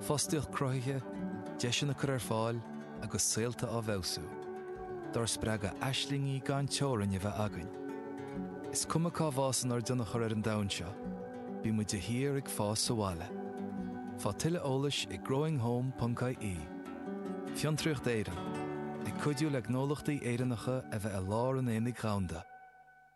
Fostaíocht cruthaithe, deiseanna á gcur ar fáil agus saolta á bhfeabhsú, dár spreagadh aislingí gan teorainn a bheith againn. Is cuma cá bhfásann ár dtionchar ar an domhan seo, bíonn muid de shíor ag fás sa bhaile. Faigh tuilleadh eolais ag growinghome ponc ie Fiontraíocht Éireann, ag cuidiú le gnólachtaí Éireannacha a bheith i lár an aonaigh dhomhanda.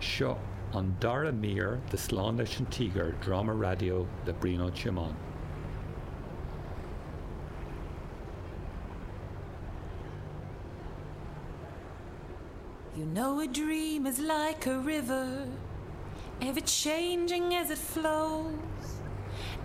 Seo an dara mír de Slán Leis an Tíogar, dráma raidió le Brian Ó Tiomáin. You know a dream is like a river, ever changing as it flows.